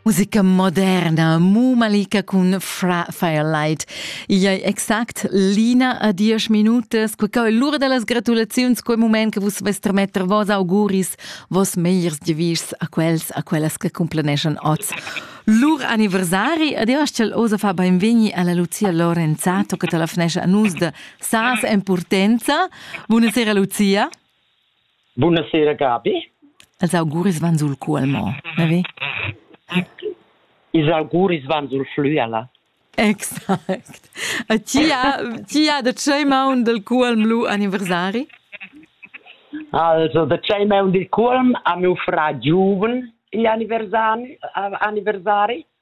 Musica moderna, Mumalika cun Fra Firelight. Ia è exact l'ina a diesch minutas, quei è l'ura da las gratulaziuns, quei moment che vus vest remetter vos auguris, vos megliers devis a quels, a quellas che cumplaneschan oz. Lur anniversari, adios ch'el osa fa benvegni alla Lucia Lorenzato che telefnesce a nus da Sas en Purtenza. Buonasera Lucia. Bunasera Gabi. Els auguris van sul cu al mo, na ve? Ils auguris van sul flü alla. Exact. A ti ha, ti ha da tschei maun del cuolm lu anniversari? Also, da tschei maun del cuolm ha miu frà giuven igl anniversari, anniversari.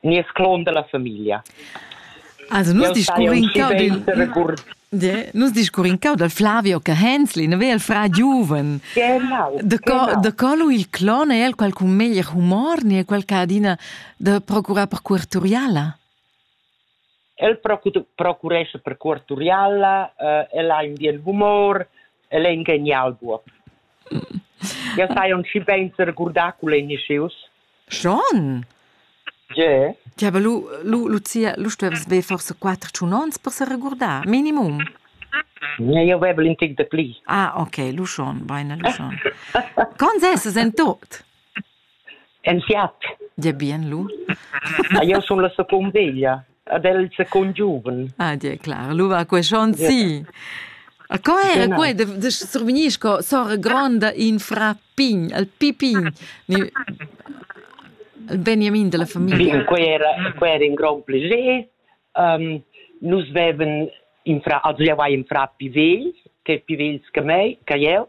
nies clon dalla famiglia. Also nus discurrin cau dil nus discurrin cau dal Flavio che Hensli, ne vel fra giuven. Genau. De co de co lu il clon è el quel con meglier humor, ne quel che adina de procurar per cuorturiala. El procurescha per cuort Turiala, uh, el ha in bien humor, el è in genial buob. Jau sai aunc schi bein regurdar cul Initius. Schon? Ge? Ja, aber lu, lu, Lucia, lu stuvevas ver forse quattro tun ons per se regurdar, minimum. Ja, io avevo in tic de pli. Ah, ok, lu schon, beine, lu schon. Con ses en tot? En fiat. Dir bien lu. Ah, jeu sun la secund veglia, ad el secund giuven. Ah, dir clar, lu va quei schon si. A co era Genau. quei de, de survignisco sora gronda in fra pign, al pipin, ni il Benjamin della famiglia. Bin, quei era, quei era in grond plascher. Um, nus veven in fra, also ja war in fra Pivel, che Pivels che mei, che jeu.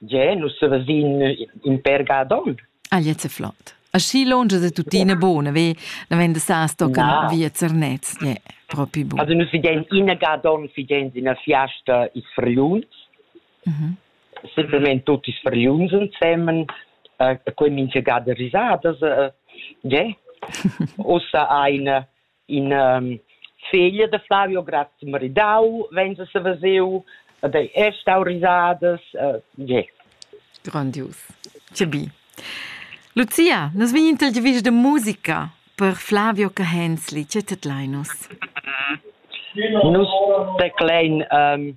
Gie, nus vesin in pèr ga ad onn. Ah, gliez è flot. Aschi lunsch è tuttina buna, ve? La venda sa stocca no. via Zernez, gliez è propi bun. Also nus vedein ina ga ad onn vedein ina fiasta ils Fergliuns. Mhm. Simpelmente tutti i Fergliuns insieme, uh, quei minchia ga de risadas, uh, yeah. Ussa ein in um, figlia de Flavio Graz maridau venza se veseu ed ei è stau risadas uh, yeah. grandios che bi Lucia, nos vin interviews de musica per Flavio Cahenzli, ce tetlainos? Nus teclein um,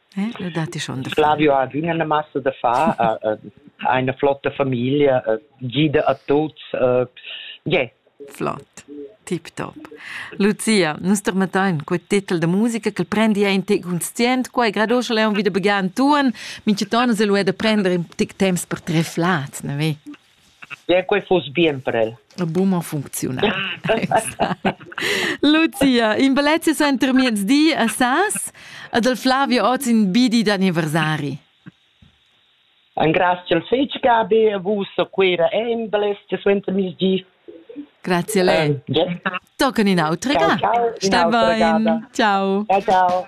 Eh, da datti schon da Flavio ha adüna la massa da far, uh, uh, eine flotte Familie, uh, gida a tuts, uh, yeah. Flott. Tip-top. Lucia, nus termetain quei titel da musica che prendi ein tic conscient, quei grado schon leon wieder begann tun, minche tonus e lu è da prender in tic temps per tre flats, ne vi? Bien, quei fuss bien per el. Buma funcziunal. Lucia, in bellezia suenter miezdi a Sas ed il Flavio oz in bidi d'anniversari. Grazie al fetg Gabi, a vus a Cuira e in bellezia suenter miezdi. Grazie a lei. Eh, Toccano in altro. Ciao, ciao. Stai bene. Ciao. Ciao, ciao.